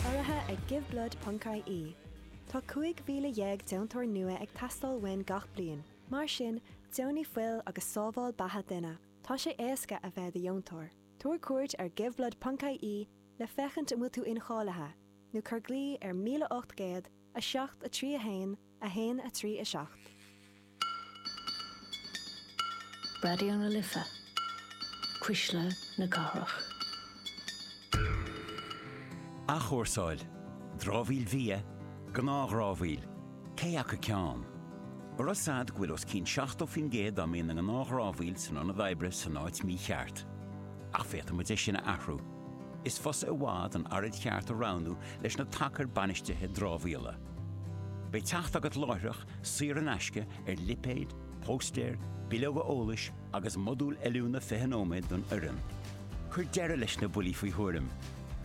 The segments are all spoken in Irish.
Urraithe ag Give Blood Ponc-IE, Tá 15,000 deontóir nua ag teastáil uainn gach bliain, mar sin, deonaigh fuil agus sábháil beatha duine! Tá sé éasca a bheith i do dheontóir. Tabhair cuairt ar Give Blood Ponc-IE le féachaint an bhfuil tú incháilithe, nó cuir glao ar 1800 7 3 1, 1, 3, 7. Raidió na Life, cuisle na cathrach. Athchúrsáil, dramhaíl bhia, gnáthdhramhaíl, cé acu ceann? An raibh a fhios agat go bhfuil os cionn 70% dá mbíonn ina ngnáthdhramhaíl san ionad oibre san áit mhícheart. Ach féadfaidh muid é sin a athrú. Is fusa i bhfad an araid cheart a roghnú leis na tacair bainistithe dramhaíola. Beidh teacht agat láithreach, saor in aisce, ar lipéid, póstaeir, bileoga eolais agus modúl oiliúna 20 nóiméad don fhoireann. Cuir deireadh leis na buillí faoi thuairim.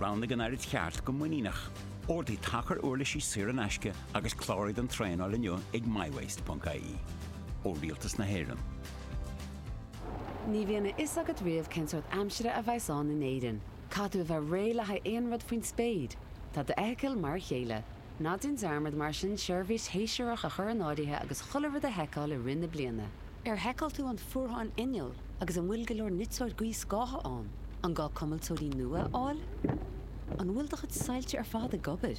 Roghnaigh an araid cheart go muiníneach. Ordaigh tacar uirlisí saor in aisce agus cláraigh don traenáil inniu ag mywaste.ie. Ó Rialtas na hÉireann. Ní bhíonn a fhios agat riamh cén sórt aimsire a bheas ann in Éirinn. Caithfidh tú a bheith réidh le haghaidh aon rud faoin spéir. Tá d'fheithicil mar a chéile. Ná déan dearmad mar sin seirbhís shéasúrach a chur in áirithe agus chuile rud a sheiceáil i rith na bliana. Ar sheiceáil tú an fuarthán innill agus an bhfuil go leor niteora gaothscátha ann? An gá cuimilteoirí nua a fháil? An bhfuil do chuid soilse ar fad ag obair?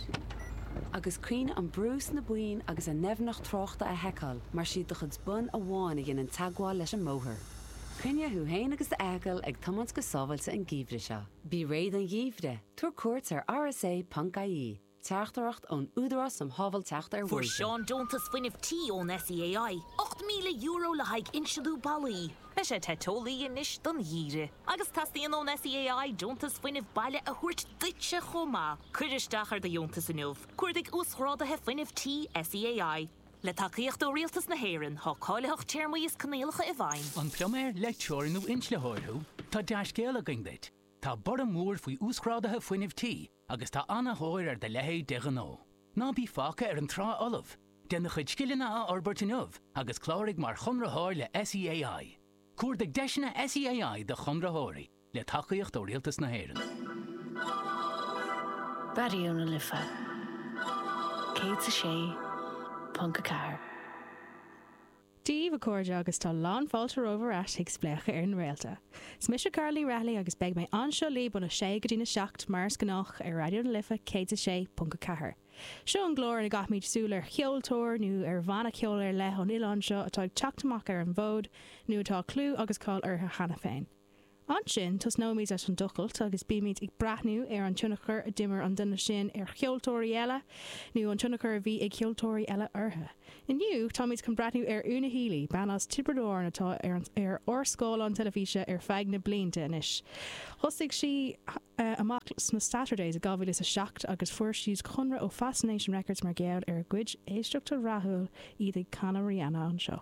Agus cuimhnigh an brú sna boinn agus a ndoimhneacht tráchta a sheiceáil mar siad do chuid bonn amháin a dhéanann teagmháil leis an mbóthar. Coinnigh thú fhéin agus d'fheithicil ag tiomáint go sábháilte an geimhreadh seo. Bí réidh don gheimhreadh, tabhair cuairt ar rsa.ie, Teachtaireacht ón Údarás um Shábháilteacht ar Bhóithre. Fuair Seán deontas fuinnimh tí ón SEAI, €8,000 le haghaidh insliú ballaí. Beidh sé te teolaí anois don gheimhreadh agus teastaíonn ón SEAI deontas fuinnimh baile a thabhairt duitse chomh maith. Cuir isteach ar do dheontas inniu, cuardaigh Uasghráduithe Fuinnimh Tí SEAI. Le tacaíocht ó Rialtas na hÉireann, tá cáilitheacht téarmaí is coinníollacha i bhfeidhm. An pluiméir, leictreoir nó inslitheoir thú? Tá dea-scéal againn duit! Tá borradh mór faoi uasghráduithe fuinnimh tí agus tá ana-thóir ar do leithéid de ghnó. Ná bí fágtha ar an trá fholamh! Déan do chuid scileanna a fhorbairt inniu agus cláraigh mar chonraitheoir le SEAI. Cuardaigh deiseanna SEAI do chonraitheoirí. le tacaíocht ó Rialtas na hÉireann. Raidió na Life 106.4. Dia daoibh, a chairde, agus tá lán fáilte romhaibh ar ais chuig Spléachadh ar na Réalta. 'S mise Carla Ní Rathallaigh agus beidh mé anseo libh óna sé go dtí na seacht, mar is gnách, ar Raidió na Life 106.4. Seo an clár ina gcaithfimid súil ar cheoltóir nó ar bhanna ceoil ar leith ón oileán seo atá ag teacht amach ar an bhfód nó atá clú agus cáil orthu cheana féin. Ansin tosnóimid leis an tochailt agus beimid ag breathnú ar an tionchar a d'imir an duine sin ar cheoltóirí eile, nó an tionchar a bhí ag ceoltóirí eile orthu. Inniu, táimid chun breathnú ar Una Healy, bean as Tiobraid Árann atá ar ár scáileáin teilifíse ar feadh na blianta anois. Thosaigh sí amach sna Saturdays i 2007 agus fuair siad conradh ó Fascination Records mar gheall ar a gcuid éisteachtaí rathúla, iad ag canadh Rihanna anseo.